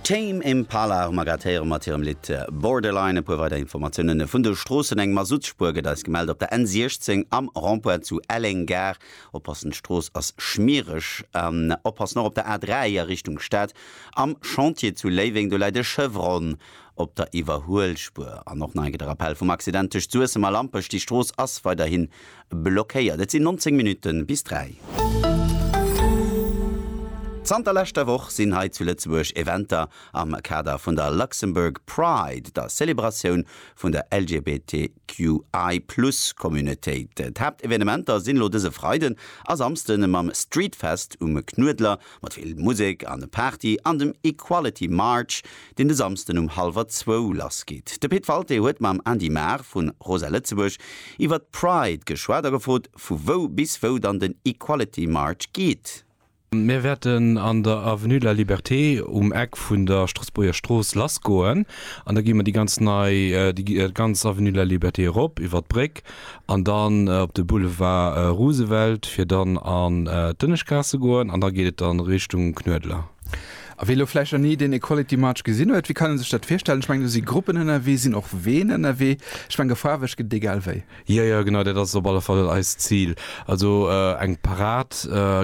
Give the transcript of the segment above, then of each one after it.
Tame Impala hu mer grad héiere mat hirem Lidd Borderline. E puer weider Informatiounen vun de Stroossen, Eng Masuttspuer gëtt eis gemellt op der N16 am Rond-point zu Elleng Gare. Oppassen, d'Strooss ass schmiereg. An oppassen och op der A3 a Richtung Stad am Chantier zu Léiweng, do läit e Chevron op der Iwwerhuelspuer. An och nach eng Kéier de Rappell vum Accident tëscht Suessem a Lampech, déi Strooss ass weiderhin blockéiert. Et sinn 19 Minutten bis 3. Zanter leschter Woch sinn hei zu Lëtzebuerg Eventer am Kader vun der Luxembourg Pride, der Zelebratioun vun der LGBTQI Plus Communautéit. D'Haaptevenementer sinn elo dëse Freiden a Samsden mam Streetfest um Knuedler, Mat vill Musek an Party an dem Equality March, deen de Samsden um hallwer zwou lass geet. De Pit Walté huet mam Andy Maar vu Rosa Lëtzebuerg iwwer d'Pride geschwat a gefrot, vu wou bis wou dann den Equality March geet. Mir wäerten an der Avenue de la Liberté um Eck vun der Stroossbuerger Strooss lassgoen an da gi mer déi ganz nei, déi ganz Avenue de la Liberté erop iwwer d'Bréck an dann op de Boulevard Roosevelt fir dann an d'Ënneschtgaass ze goen an da geet et dann Richtung Knuedler. A wee elo vläicht nach ni den Equality March gesinn huet, wéi kann en sech dat virstellen? Ech mengen do si Gruppen ënnerwee, sinn och Ween ënnerwee, ech menge faarweg gëtt et egal wéi. Jo jo genau, dat ass op alle Fall eist Zil. Also eng Parad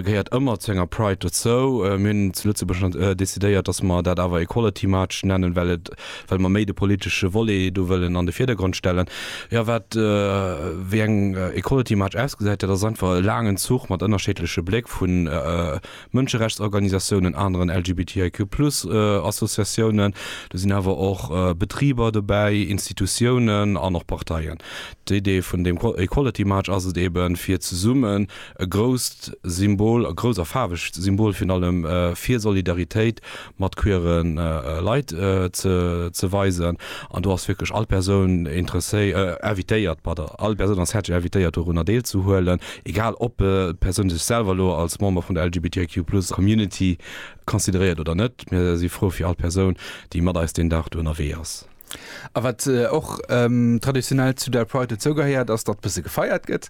gehéiert ëmmer zu enger Pride dozou. Mir hunn zu Lëtzebuerg decidéiert, datt mer dat awer Equality March nennen, well et well mer méi de politesche Volet do wëllen an de Virdergrond stellen. Jo, wat wéi eng Equality March ausgesäit, dat ass einfach e laangen Zuch mat ënnerscheedleche Bléck vu Mënscherechtsorganisatiounen, aneren LGBTIQ plus Associatiounen, do sinn awer och Betriber dobäi, Institutiounen an och Parteien. D'Idee vun deem Equality March ass et eeben, fir zesummen, E grousst Symbol, e grousst a faarwegt Symbol virun allem, fir Solidaritéit mat queere Leit ze weisen. An do ass wierklech all Persoun invitéiert, pardon, all Persoun ass häerzlech invitéiert dorunner deelzehuelen, egal ob d'Persoun sech selwer elo als Member vun der LGBTIQ plus Community consideréiert oder net. Mir si frou fir all Persoun, déi mat eis deen Dag do ënnerwee ass. A wat och traditionell zu der Pride dozougehéiert, ass, datt bësse gefeiert gëtt.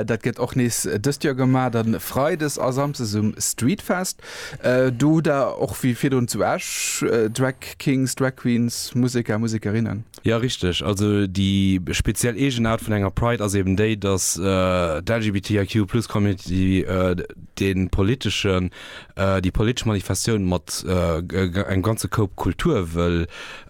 Dat gëtt och nees dëst Joer gemaach, dann freides a samsdes um Streetfest. Do hutt Der och wéi virdrun zu Esch Drag Kings, Drag Queens, Museker, Musekerinnen. Jo, richteg. Also déi speziell Eegenaart vun enger Pride ass eben déi, datt d'LGBTIQ-Plus-Community de politeschen, déi politesch Manifestatioun mat engem ganze Koup Kultur wëll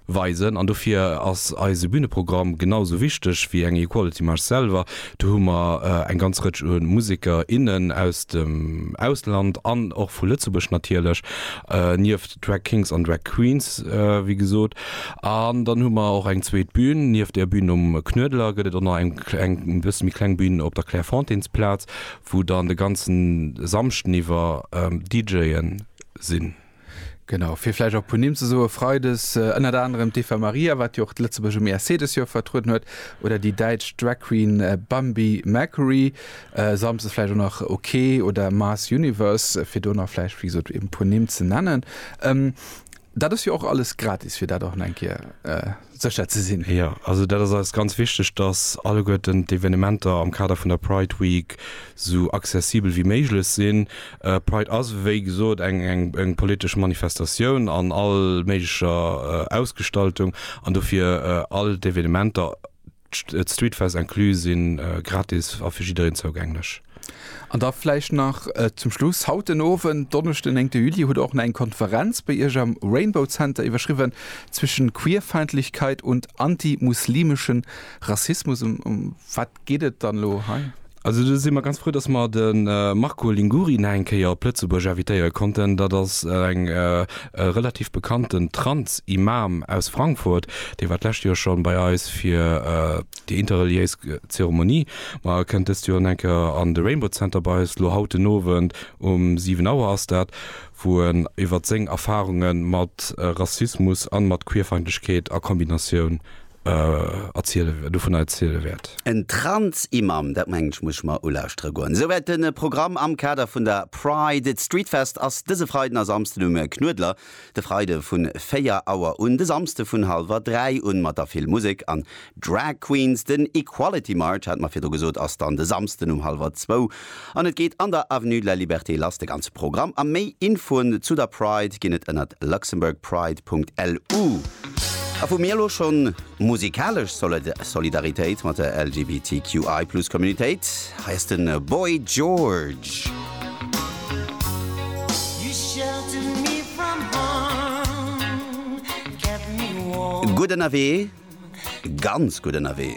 Weisen, an dofir ass eise Büneprogramm genau esou wichteg wéi eng Equality March selwer. Do hu mer eng ganz Rëtsch u Museker, innen aus dem Ausland an och vu Lëtzebuerg natierlech, nieft Drag Kings an Drag Queens, wéi gesot. An dann hu mer och eng zweet Bün. Nieft der Bün um Knuedler gëtt et och nach eng kleng, e bësse méi kleng Bün op der Clairefontaines-Plaz, wou dann de ganze Samschden iwwer DJe sinn. Genau, fir vläicht och e puer Nimm ze soen, Freides ënnert anerem d'Eva Maria, wat jo och d'Lëtzebuerg um ESC dës Joer vertrueden huet, oder déi däitsch Drag Queen Bambi Mercury, samsdes vläicht och nach OK oder Mars Universe, fir do nach vläicht, wéi gesot, e puer Nimm ze nennen. Dat ass jo och alles gratis, fir dat och nach eng Kéier. sécher ze sinn. Jo, also dat ass eis ganz wichteg, dass alleguerten d'Evenementer am Kader vun der Pride Week esou accessibel wéi méiglech sinn. Pride ass, wéi gesot, eng politesch Manifestatioun an all méiglecher Ausgestaltung an dofir all d'Evenementer, D'Streetfest inclus si gratis a fir jiddereen zougänglech. An da vläicht nach zum Schluss, Haut den Owend, Donneschden den 9 Juli, hutt Der och nach eng Konferenz bei Iech am Rainbow Center iwwerschriwwen, Zwischen Queerfeindlichkeit und antimuslimeschen Rassismus. Ëm wat geet et dann elo hei? Also do si mer ganz frou, datt mer de Marco Linguri nach eng Kéier op Lëtzebuerg invitéiere konnten. Dat ass eng e relativ bekannten Trans-Imam aus Frankfurt. Dee war d'lescht Joer schonn bei eis fir déi interreliéis Zeremonie. Ma e kënnt dëst Joer nach eng Kéier an de Rainbow Center bei eis, elo haut den Owend um 7 Auer ass dat, wou en iwwert seng Erfarunge mat Rassismus a mat Queerfeindlechkeet a Kombinatioun dovunner erziele wäert. En Trans-Imam, dat mengen ech muss ech mer ulauschteren goen. Souwäit de Programm am Kader vun der Pride. D'Streetfest ass dëse Freiden a Samsden um Knuedler, de Freide vu 4 Auer un, de Samsde vun hallwer 3 un, mat der vill Musek an Drag Queens. Den Equality March, hat mer virdru gesot, ass dann de Samsden um hallwer zwou. An et geet an der Avenue de la Liberté lass, de ganze Programm a méi Infoen zu der Pride ginn et ënnert luxembourgpride.lu. A vu mir elo schonn musikalesch Solidaritéit mat der LGBTQI plus Communitéit. Hei ass de Boy George. Gutt ënnerwee, ganz gutt ënnerwee.